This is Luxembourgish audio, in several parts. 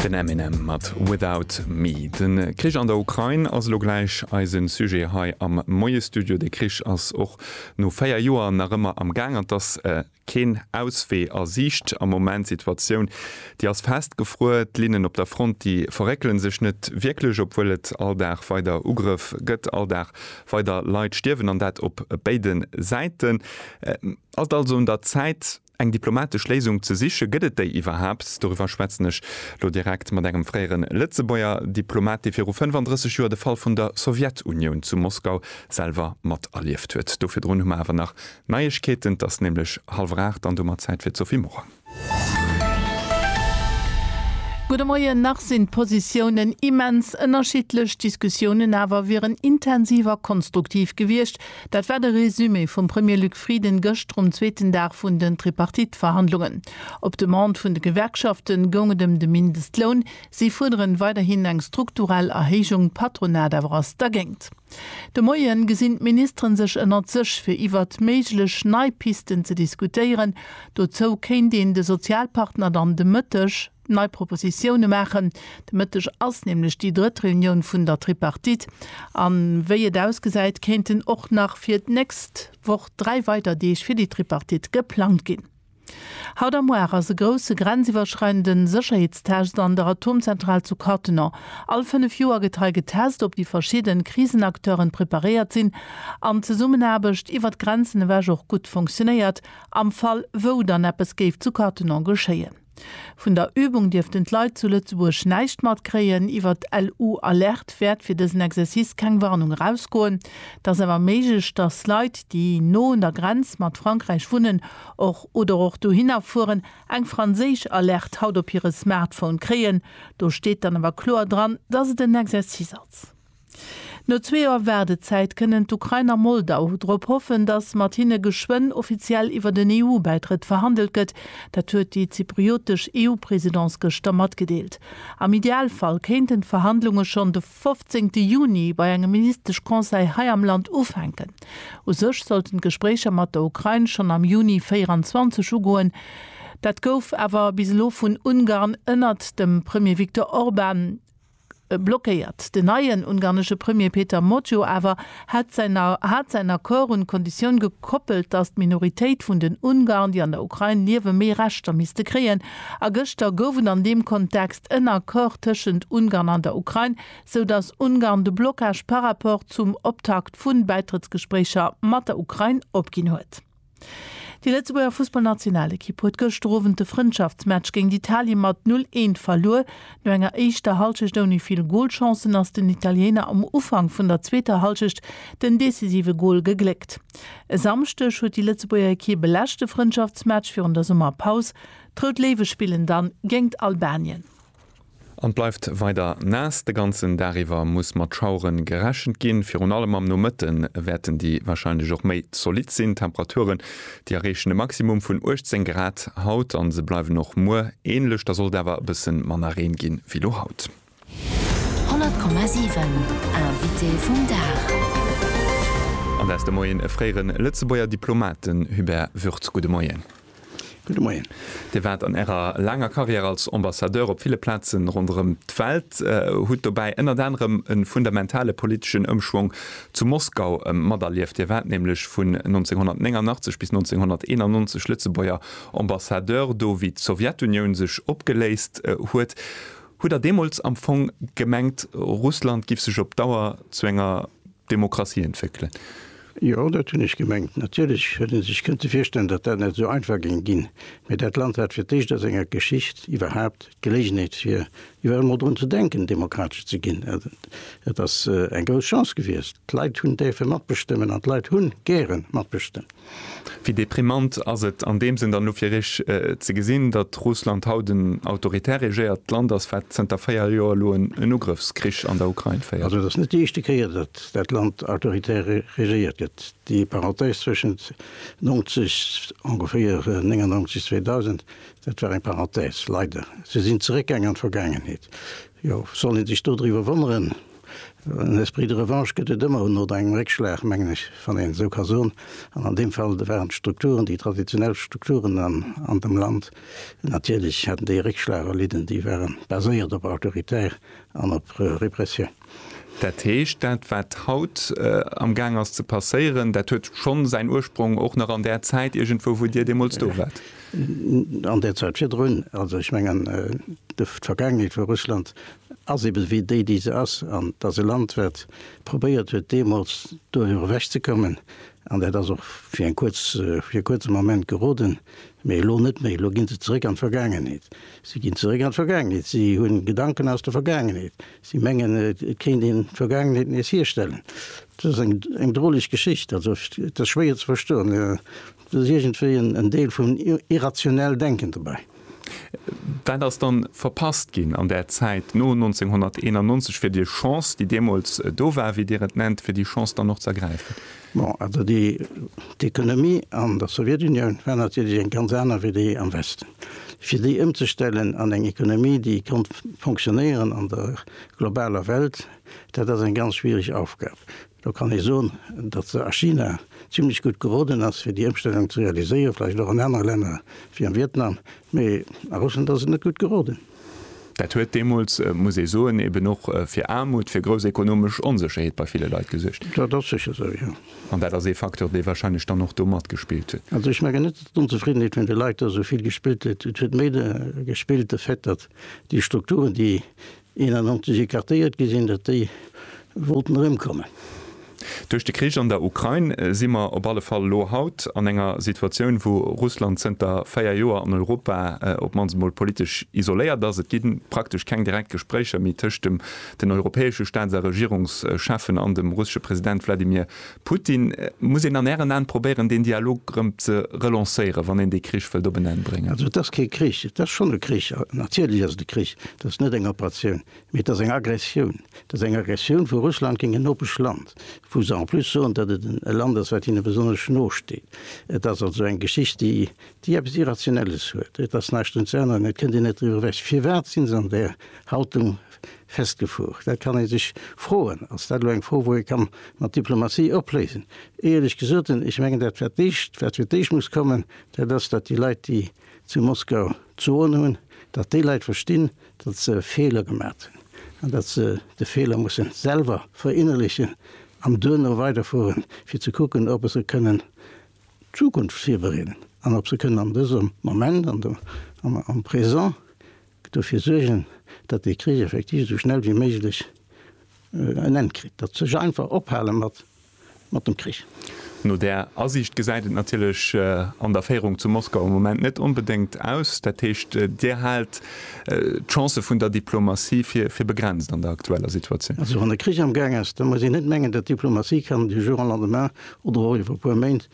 Den Eminem mat Without Me. De Krich an der Ukrain ass elo gläich eise Sujet hei am Moie-Studio. De Krich ass och no 4 Joer nach ëmmer am Gaang an 't ass keen Auswee a Siicht am Moment. D'Situatioun, déi ass festgefruer. D'Linnen op der Front, déi verréckele sech net wierklech, obwuel et all Dag weider Ugrëff gëtt, all Dag weider Leit stierwen an dat op béide Säiten. Et ass also un der Zäit, Eng diplomatesch Léisung ze siche, gëtt et déi iwwerhaapt? Doriwwer schwätzen ech elo direkt mat engem fréiere Lëtzebuerger Diplomat, dee viru 35 Joer de Fall vun der Sowjetunioun zu Moskau selwer mat erlieft huet. Do virdrun hu mer awer nach Neiegkeeten. Et ass nämlech hallwer aacht an domat Zäit fir d'Sophie Morang. Gudde Moien. Nach sinn d'Positiounen immens ënnerschiddlech, d'Diskussiounen awer wieren intensiv a konstruktiv gewiescht. Dat war de Résumé vum Premier Luc Frieden gëscht rum zweeten Dag vun den Tripartite-Verhandlungen. Op Demande vun de Gewerkschaften goung et ëm de Mindestloun. Si fuerderen weiderhin eng strukturell Erhéijung, d'Patronat awer ass dergéint. De Moien gesinn d'Ministeren sech ënnert sech fir iwwert méiglech nei Pisten ze diskutéieren. Dozou kéint een de Sozialpartner dann de Mëtteg, nei Propositioune maachen. De Mëtteg ass nämlech déi drëtt Reunioun vun der Tripartite an wéi et ausgesäit, kéinten och nach fir d'nächst Woch dräi weider Deeg fir déi Tripartite geplangt ginn. Haut a muar ass e grousse grenziwwerschreidende Sécherheetstest an der Atomzentral zu Cattenom. All fënnef Joer gëtt hei getest, ob déi verschidde Krisenacteuren preparéiert sinn an d'Zesummenaarbecht iwwer d'Grenzen ewech och gutt funktionéiert, am Fall wou dann eppes géif zu Cattenom geschéien. Vun der Übung dierften d'Leit zu Lëtzebuerg näischt matkréien. Iwwer d'LU Alerte wäert fir dësen Exercice keng Warnung erausgoen. Et ass awer méiglech, dass Leit, déi no un der Grenz mat Frankräich wunnen och oder och dohinner fueren, eng franséisch Alerte haut op hire Smartphone kréien. Do steet dann awer kloer dran, dass et en Exercice ass. No zwee Joer Waardezäit kënnen d'Ukrain a Moldau drop hoffen, datt mat hinne geschwënn offiziell iwwer en EU-Bäitrëtt verhandelt gëtt. Dat huet déi zypriotesch EU-Presidence gëschter matgedeelt. Am Idealfall kéinten d'Verhandlunge schonn de 15 Juni bei engem Ministesch-Conseil hei am Land ufänken. U sech sollten d'Gespréicher mat der Ukrain schonn am Juni 24 ugoen. Dat gouf awer bis elo vun Ungarn ënnert dem Premier Viktor Orban blockéiert. Den neien ungarnesche Premier Peter Motjo awer hätt hat säin Accord un d'Konditioun gekoppelt, datt d'Minoritéit vun den Ungarn, déi an der Ukrain liewen, méi Rechter misste kréien. A gëschter gouf et an deem Kontext en Accord tëschent Ungarn an der Ukrain, sou datt Ungarn de Blockage par rapport zum Optakt vun Bäitrëttsgespréicher mat der Ukrain opginn huet. Déi Lëtzebuerger Fussballnationalekipp huet gëschter Owend de Frëndschaftsmatch géint Italien mat 0, 1 verluer. No enger éischter Hallschecht ouni vill Golchancen ass den Italiener am Ufank vun der zweeter Hallschecht den decisive Gol gegléckt. E Samschdeg huet déi Lëtzebuerger Ekipp e leschte Frëndschaftsmatch virun der Summerpaus. D'Rout Léiwe spillen dann géingt Albanien. An et bleift weider naass. De ganzen Dag iwwer muss mat Schauere gerechent ginn. Virun allem am Nomëtte wäerten déi warscheinlech och méi zolitt sinn. D'Temperaturen, déi erreechen e Maximum vun 18 Grad haut a se bleiwen och muer änlech. Da soll et awer e bësse manner Reen gi wéi elo haut. 100,7 Invité vum Dag. An der Ste Moien e fréiere Lëtzebuerger Diplomat, den Hubert Würz. Gudde Moien. Gudde Moien. Dir waart an Ärer laanger Karriär als Ambassadeur op ville Plaze ronderëm d'Welt, hutt dobäi ënnert anerem e fundamentale politeschen Ëmschwong zu Moskau materlieft. Dir waart nämlech vun 1989 bis 1991 Lëtzebuerger Ambassadeur do, wéi d'Sowjetunioun sech opgeléist huet. Hutt Der deemools am Fong gemengt, Russland giff sech op Dauer zu enger. Demokratie entwéckelen. Jo, dat hunn ech gemengt. Natierlech huet ee sech kënnte virstellen, datt dat net esou einfach géing ginn, mee dat Land hat fir d'éischt a senger Geschicht iwwerhaapt d'Geléigheet, fir iwwer emol drun ze denken, demokratesch ze ginn. Et ass eng grouss Chance gewiescht. D'Leit hunn däerfe matbestëmmen an d'Leit hu gäre matbestëmmt. Wéi deprimant ass et an deem Sënn dann elo fir Iech ze gesinn, datt Russland haut en autoritär regéiert Land ass, wat zënter véier Joer elo en Ugrëffskrich an der Ukrain féiert? Also et ass net déi éischte Kéier, datt dat Land autoritär regéiert gëtt. Déi Parenthèse zwëschent 90, ongeféier 1999, 2000, dat war eng Parenthèse, leider. Se sinn zeréckgaang an d'Vergaangenheet. Jo, soll ee sech dodriwwer wonneren? En esprit de revanche gëtt et ëmmer no engem Réckschlag, mengen ech, wann een esou ka soen. An an deem Fall waren d'Strukturen, déi traditionell Strukturen an dem Land, natierlech haten déi e Réckschlag erlidden. Déi ware baséiert op Autoritéit an op Repressioun. Dat heescht, dat wat haut amgaang ass ze passéieren, dat huet schonn säin Ursprong och nach an där Zäit iergendwou, wou Dir deemools do waart? An där Zäit virdrun. Also ech mengen, d'Vergaangenheet vu Russland ass eben wéi déi déi se ass an et ass e Land wat probéiert huet deemools doriwwer ewech ze kommen an dat ass och fir eng kuerz fir e kuerze Moment geroden, mee elo net méi. Elo gi se zeréck an d'Vergaangenheet. Si ginn zeréck an d'Vergaangenheet. Si hunn Gedanken aus der Vergaangenheet. Si mengen et kéint een d'Vergaangenheet nees hierstellen. Dat ass eng droleg Geschicht. Also et ass schwéier ze verstoen. Do ass iergendwéi en Deel vun irrationell Denken dobäi. Wat ass dann verpasst ginn an där Zäit no 1991, fir déi Chance, déi deemools do war, wéi Dir et nennt, fir déi Chance dann och z'ergräifen? Bon, also déi, d'Ekonomie an der Sowjetunioun war natierlech eng ganz aner wéi déi am Westen. Fir déi ëmzestellen an eng Economie, déi konnt fonctionnéieren an der globaler Welt, dat ass eng ganz schwierig Aufgab. Do kann ee soen, datt se a China zimlech gutt geroden ass, fir déi Ëmstellung ze realiséieren, vläicht och an anere Länner wéi am Vietnam, mee a Russland ass se net gutt geroden. Dat huet deemools, muss ee soen, eben och fir Aarmut, fir grouss ekonomesch Onsécherheet bei ville Leit gesuergt. Dat ass sécher esou, jo. An dat ass ee Facteur, dee wahrscheinlech dann och do matgespillt huet. Also ech mengen net, datt d'Onzefriddenheet vun de Leit do esou vill gespillt huet. Et huet méi gespillt de Fait, datt déi Strukturen, déi 91 écartéiert gi sinn, datt déi wollten erëmkommen. Duerch de Krich an der Ukrain si mer op alle Fall elo haut an enger Situatioun, wou Russland zënter véier Joer an Europa op d'mannst emol politesch isoléiert ass. Et gi praktesch keng direkt Gespréicher méi tëscht den europäesche Staats a Regierungscheffen an dem russesche President Wladimir Putin, Muss een an Ären Aen probéieren deen Dialog erëm ze relancéieren, wann een dee Krich wëllt op en Enn bréngen? Also et ass kee Krich, et ass schonn e Krich, natierlech ass et e Krich, et ass net eng Operatioun, mee et ass eng Aggressioun, et ass eng Aggressioun vu Russland géint en nopesch Land, wou se en plus soen, datt et e Land ass wat hinne besonnesch no steet. Et ass also eng Geschicht déi déi eppes Irrationelles huet. Et ass näischt un ze änneren, et kënnt een net driwwer ewech. Firwat si se an där Haltung festgefuer. Dat kann ee sech froen. Ass dat elo eng Fro, wou ee ka mat Diplomatie opléisen? Éierlech gesot, ech mengen, dat wat d'éischt, wat fir d'éischt muss kommen, dat ass, datt déi Leit, déi zu Moskau d'Soen hunn, datt déi Leit verstinn, datt se Feeler gemat hunn an datt se de Feeler musse selwer verinnerlechen an duerno weiderfueren, fir ze kucken, ob se kënnen d'Zukunft virbereeden an ob se kënnen an dësem Moment, am Présent, dofir suergen, datt dee Krich effektiv esou schnell wéi méiglech en Enn kritt, datt sech einfach ophale mat mat dem Krich. No där Asiicht gesäit et natierlech an der Féierung zu Moskau am Moment net onbedéngt aus. Dat heescht, Dir haalt d'Chancë vun der Diplomatie fir fir begrenzt an der aktueller Situatioun? Also wann e Krich am Gaang ass, da muss een net mengen, datt d'Diplomatie kann du jour au lendemain oder och iwwer e puer Méint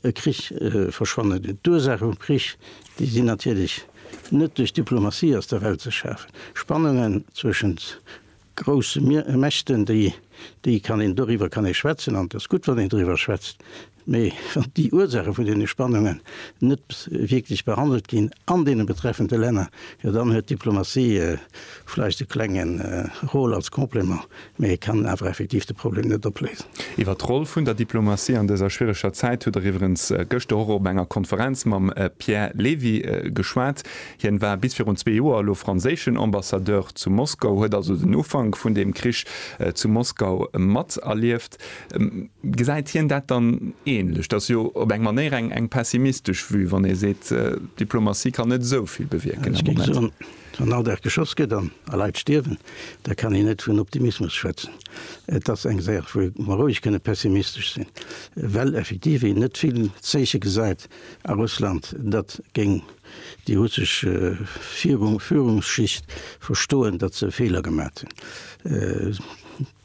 e Krich verschwannen dinn. D'Ursaache vum Krich, déi sinn natierlech. Net duerch Diplomatie aus der Welt ze schafen. Spannungen zwëschent grousse Mächten, déi déi kann een, doriwwer kann ee schwätzen an et ass gutt, wann een doriwwer schwätzt, mee wann déi Ursaache vun deene Spannungen net wierklech behandelt ginn an deene betreffende Länner, jo dann huet d'Diplomatie vläicht e klenge Rôle als Complément, Mee e kann awer effektiv de Problem net opléisen. Iwwer d'Roll vun der Diplomatie an dëser schwiereger Zäit hutt Der iwwerens gëschter och op enger Konferenz mam Pierre Levy geschwat. Hien war bis virun zwee Joer elo franséischen Ambassadeur zu Moskau, huet also den Ufank vun deem Krich zu Moskau mat erlieft. Gesäit hien dat dann ähnlech? Dat ass jo op eng Manéier eng pessimistesch Vue, wann ee seet, d'Diplomatie kann net esou vill bewierken am Moment. Wann all Dag geschoss gëtt an a Leit stierwen, da kann een net vun Optimismus schwätzen. Et ass eng Saach, wou mer roueg kënne pessimistesch sinn, well effektiv een net vill Zeeche gesäit a Russland, datt géing déi russesch Führungsschicht verstoen, datt se Feeler gemat hunn.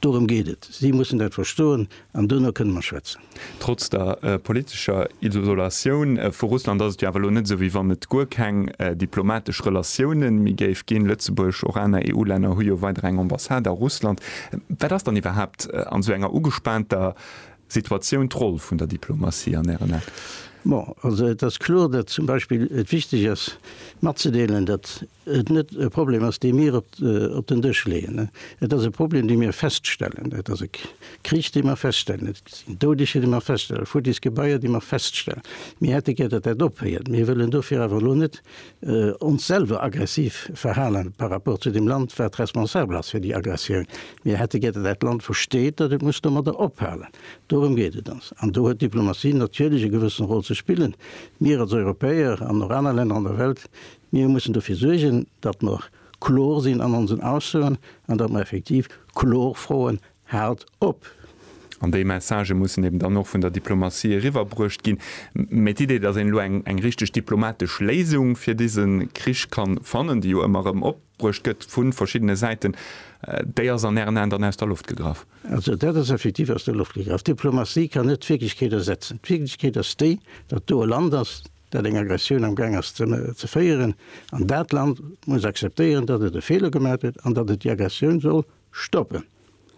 Dorëm geet et. Si mussen dat verstoen, an duerno kënne mer schwätzen. Trotz der politescher Isolatioun vu Russland ass et jo awer elo net esou, wéi wann et guer keng diplomatesch Relatioune méi géif ginn. Lëtzebuerg, och aner EU-Länner hu jo weider eng Ambassade a Russland. Wat ass dann iwwerhaapt an esou enger ugespaanter Situatioun d'Roll vun der Diplomatie an Ären Ae? Bon, also et ass kloer, datt zum Beispill et wichteg ass matzedeelen, datt et net e Problem ass, dee mir op den Dësch leeën. Et ass e Problem, dee mir feststellen. Et ass e Krich, dee mer feststellen. Et sinn Doudeger, déi mer feststellen, futtis Gebaier, déi mer feststellen. Mir hätte gär, datt dat ophéiert. Mir wëllen dofir awer elo net ons selwer aggressiv verhalen par rapport zu deem Land, wat responsabel ass fir déi Aggressioun. Mir hätte gär, datt dat Land versteet, datt et muss domadder ophalen. Dorëm geet et ons. An do huet d'Diplomatie natierlech e gewëssen Rôle ze spillen. Mir als Europäer an och aner Länner an der Welt Mir mussen dofir suergen, datt mer kloer sinn an onsen Aussoen an datt mer effektiv kloer froen, Haalt op! An déi Messagë mussen eben dann och vun der Diplomatie eriwwerbruecht ginn. Mä d'Idee, datt een elo eng richteg diplomatesch Léisung fir dise Krich kann fannen, déi jo ëmmer erëm opbruecht gëtt vu verschiddene Säiten, déi ass an Ären Aen dann aus der Loft gegraff? Also dat ass effektiv aus der Loft gegraff. D'Diplomatie kann net d'Wierklechkeet ersetzen. D'Wierklechkeet ass déi, datt do e Land ass, dat eng Aggressioun am Gaang ass ze féieren, an dat Land muss akzeptéieren, datt et e Feeler gemat huet an datt et déi Aggressioun soll stoppen.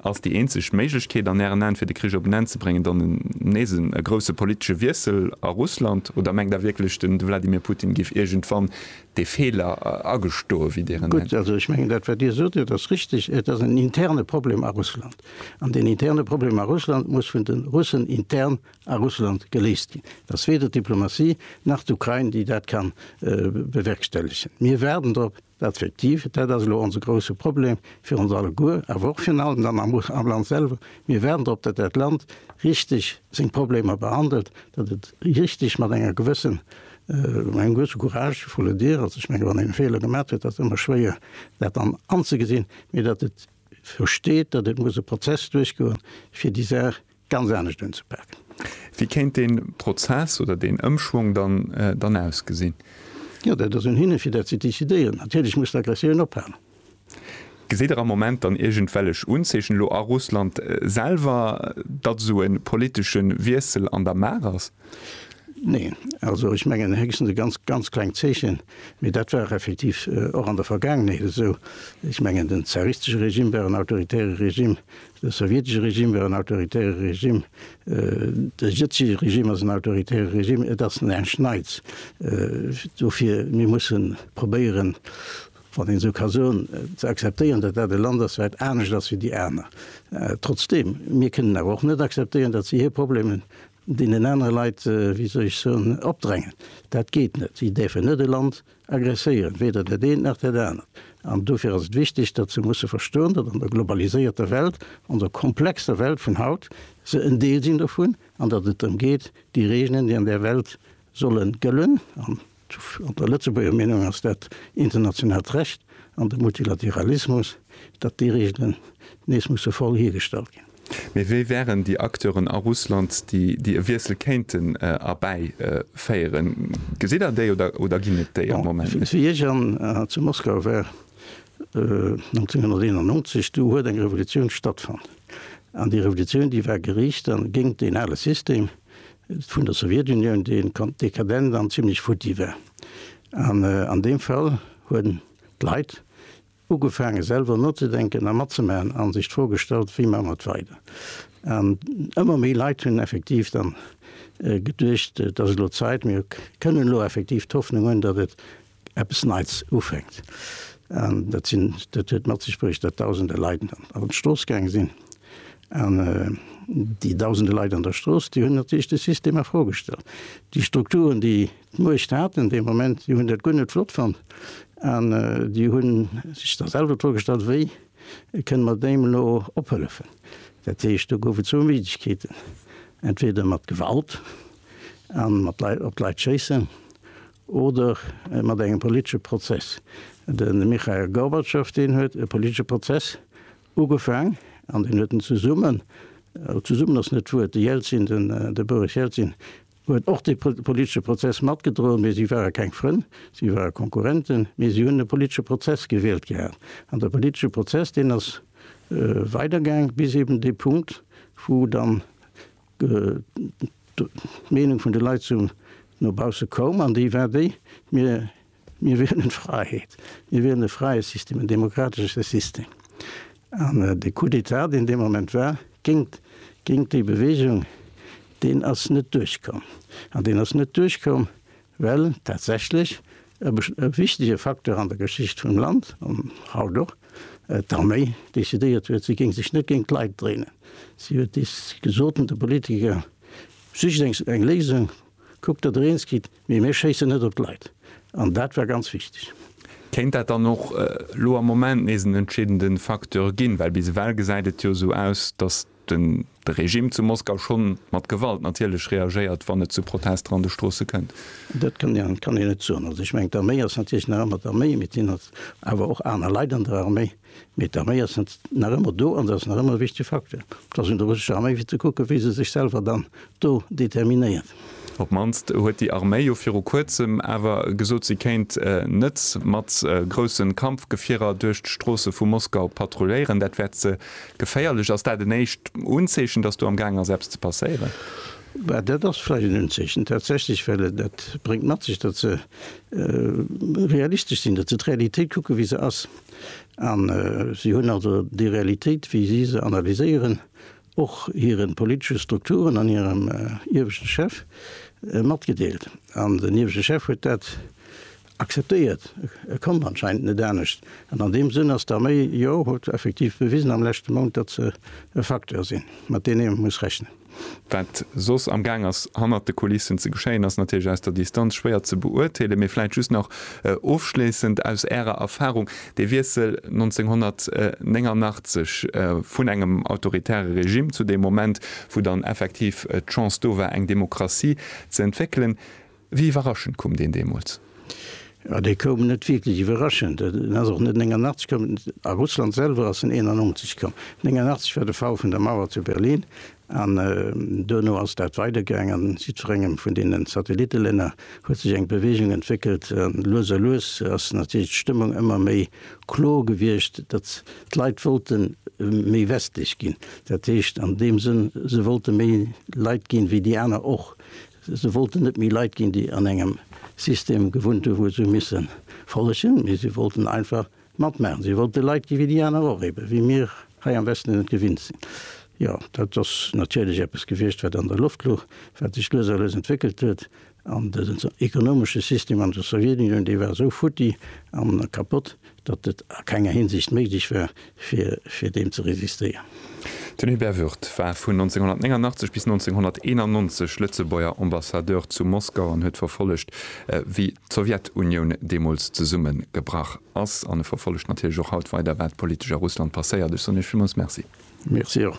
Ass déi eenzeg Méiglechkeet an Ären Aen, fir de Krich op en Enn ze bréngen, dann nees e grousse politesche Wiessel a Russland, oder mengt Der wierklech, de Wladimir Putin géif iergendwann dee Feeler agestoen, wéi Dir en nennt? Gutt, also ech mengen, dat wat Dir sot, dat ass richteg. Et ass en interne Problem a Russland, an deen interne Problem a Russland muss vun de Russen intern a Russland geléist ginn. Et ass weder d'Diplomatie nach d'Ukrain, déi dat ka bewerkstellegen. Mir waarden drop, dat effektiv, dat ass elo onse grouse Problem fir ons alleguer, awer och virun allem dann am Land selwer, mir waarden drop, datt dat Land richteg seng Problemer behandelt, datt et richteg mat enger gewëssen, mat engem gewësse Courage, il faut le dire, also ech menge wann een e Feeler gemat huet, ass ëmmer schwéier dat dann anzegesinn, mee datt et versteet, datt et muss e Prozess duerchgoen, fir déi Saach, ganz anescht unzepaken. Wéi kéint dee Prozess oder deen Ëmschwong dann ausgesinn? Jo, dat ass un hinne fir dat ze decidéieren. Natierlech muss d'Aggressioun ophalen. Geséit Der am Moment dann iergendwellech Unzeechen elo a Russland selwer, datt esou e politesche Wiessel an der Maach ass? Neen. Also ech mengen héchstens e ganz, ganz klengt Zeechen, mee dat war effektiv och an der Vergaangenheet esou. Ech mengen den zaristesche Regime war en autoritäre Regime, De sowjetesche Regime war en autoritäre Regime, de jëtzege Regime ass en autoritäre Regime. Et ass näischt Neits. Dofir mir mussen probéieren, wann een esou ka soen, ze akzeptéieren, datt dat e Land ass, wat anescht ass wéi déi aner. Trotzdeem, mir kënnen awer och net akzeptéieren, datt si hir Problemen Deenen anere Leit, wéi soll ech soen, opdrängen. Dat geet net. Si däerfen net e Land aggresséieren, weder dat eent nach dat anert. An dofir ass et wichteg, datt se musse verstoen, datt an der globaliséierter Welt, an der komplexer Welt vun haut, se en Deel sinn dovun an datt et drëm geet, déi Regelen, déi an där Welt solle gëllen, an An der Lëtzebuerger Meenung ass dat internationaalt Recht an de Multilateralismus, datt déi Reegelen nees musse voll hiergestallt ginn. Mee wie wären déi Acteuren a Russland, déi e Wiessel kéinten erbäi féieren? Gesitt Der déi oder ginn et déi am Moment net? Wéi ech an zu Moskau war 1991, du huet eng Revolutioun stattfonnt. An déi Revolutioun, déi war geriicht dann géingt deen ale System, vun der Sowjetunioun, dee dekadent an zimlech futti war. An an deem Fall hunn d'Leit ugefaange selwer nozedenken a matzemaachen a sech d'Fro gestallt, wéi maache mer et weider. An ëmmer méi Leit hunn effektiv dann geduecht, et ass elo Zäit, mir kënnen elo effektiv d'Hoffnung hunn, datt et, eppes Neits ufänkt. An dat sinn, dat huet mat sech bruecht, datt Dausende Leit an d'Strooss gaange sinn. An déi Dausende Leit an der Strooss, déi hunn natierlech de System a Fro gestallt. Déi Strukturen, déi d'Muecht haten dee Moment, déi hunn dat guer net flott fonnt. An déi hu sech da selwer d'Fro gestallt, wéi kënne mer deem elo ophëllefen. Dat heescht, do gouf et zwou Méiglechkeeten, entweder mat Gewalt a mat Leit, op d'Leit schéissen Oder mat engem politesche Prozess. De Michail Gorbatschow, deen huet e politesche Prozess ugefaang an deen huet en zesummen, zesummen ass net d'Wuert, de Jelzin, de Boris Jelzin huet och dee politesche Prozess matgedroen, mee si ware keng Frënn, si ware Konkurrenten, mee si hunn e politesche Prozess gewielt gehat. An de politesche Prozess, deen ass weidergaang bis eeben dee Punkt, wou dann D'Meenung vun de Leit sou no bausse koum, an déi war déi, Mir, mir wielen Fräiheet, mir wielen e fräie System, en demokratesche System. An de Coup d'État, deen dee Moment war, géint, géint déi Bewegung, deen ass net duerchkomm. An deen ass net duerchkomm, Well tatsächlech e wichtege Facteur an der Geschicht vum Land, an haut och, d'Arméi decidéiert huet, si géing sech net géint d'Leit dréinen. Si huet dees gesot den Politiker, Sicht eng Léisung, kuckt, datt der eens gitt, mee mir schéissen net op d'Leit. An dat war ganz wichteg. Kéint dat dann och elo am Moment nees en entscheedende Facteur ginn? Well bis ewell gesäit et jo esou aus, datt den de Regime zu Moskau schonn mat Gewalt natierlech reagéiert, wann et zu Protester an de Stroosse kënnt. Dat kann een kann een net soen. Also ech mengen d'Arméi ass natierlech nach ëmmer d'Arméi, mee et sinn als awer och aner Leit an der Arméi, mee d'Arméi ass nach ëmmer do an se ass nach ëmmer e wichtege Facteur, dass un der russescher Arméi fir ze kucken, wéi se sech selwer dann do determinéiert. Op d'mannst huet déi Arméi jo viru kuerzem awer gesot, si kéint net mat grousse Kampfgefierer duerch d'Stroosse vu Moskau patrulléieren. Dat wäert ze geféierlech. Ass dat en éischt Unzeechen, datt do am gaang ass, eppes ze passéieren? Bah, dat ass vläicht en Unzeechen, tatsächlech, well dat bréngt mat sech, datt se realistesch sinn, datt se d'Realitéit kucken, wéi se ass. A si hunn also déi Realitéit, wéi si se analyséieren, och hiren politesche Strukturen an hirem ieweschten Chef matgedeelt. An den ieweschten Chef huet dat akzeptéiert, e konnt anscheinend net anescht. An an deem Sënn ass d'Arméi, jo, huet effektiv bewisen am leschte Mount, datt se e Facteur sinn, mat deen ee muss rechnen. Wat soss am Gaang ass hannert de Kulissen ze geschéien, ass natierlech aus der Distanz schwéier ze beurteelen. Mee vläit just nach ofschléissend, aus Ärer Erfahrung, De Wiessel 1989 vun engem autoritäre Regime zu deem Moment, wou dann effektiv d'Chance do war, eng Demokratie ze entwéckelen, wéi iwwerraschend koum deen deemools? Jo, dee koum net wierklech iwwerraschend. En ass och net 89 komm. A Russland selwer ass en 91 komm. 89 war de Fall vun der Mauer zu Berlin. An duerno ass dat weidergaang a si zu engem vun deenen Satellitelänner huet sech eng Beweegung entwéckelt. An lues a lues ass natierlech d'Stëmmung ëmmer méi klo gewiescht, datt d'Leit wollte méi westlech ginn. Dat heescht an deem Sënn, se wollte méi Leit ginn, wéi déi aner och. Se wollten net méi Leit ginn, déi an engem System gewunnt hu wou se hu misse follegen, mee si wollten einfach Matmaachen. Si wollt de Leit gi wéi déi aner och, ebe wéi mir hei am Westen et gewinnt sinn. Jo, dat ass natierlech eppes gewiescht, wat an der Loft louch, wat sech lues a lues entwéckelt huet. An dësen ekonomesche System an der Sowjetunioun, dee war esou futti an kapott, datt et a kenger Hinsicht méiglech war, fir, fir deem ze resistéieren. Den Hubert Würth war vun 1989 bis 1991 Lëtzebuerger Ambassadeur zu Moskau an huet verfollegt, wéi d'Sowjetunioun deemools zesumme gebrach ass, an e verfollegt natierlech och haut weider, wat politesch a Russland passéiert. Ech soen Iech villmools Merci. Merci och.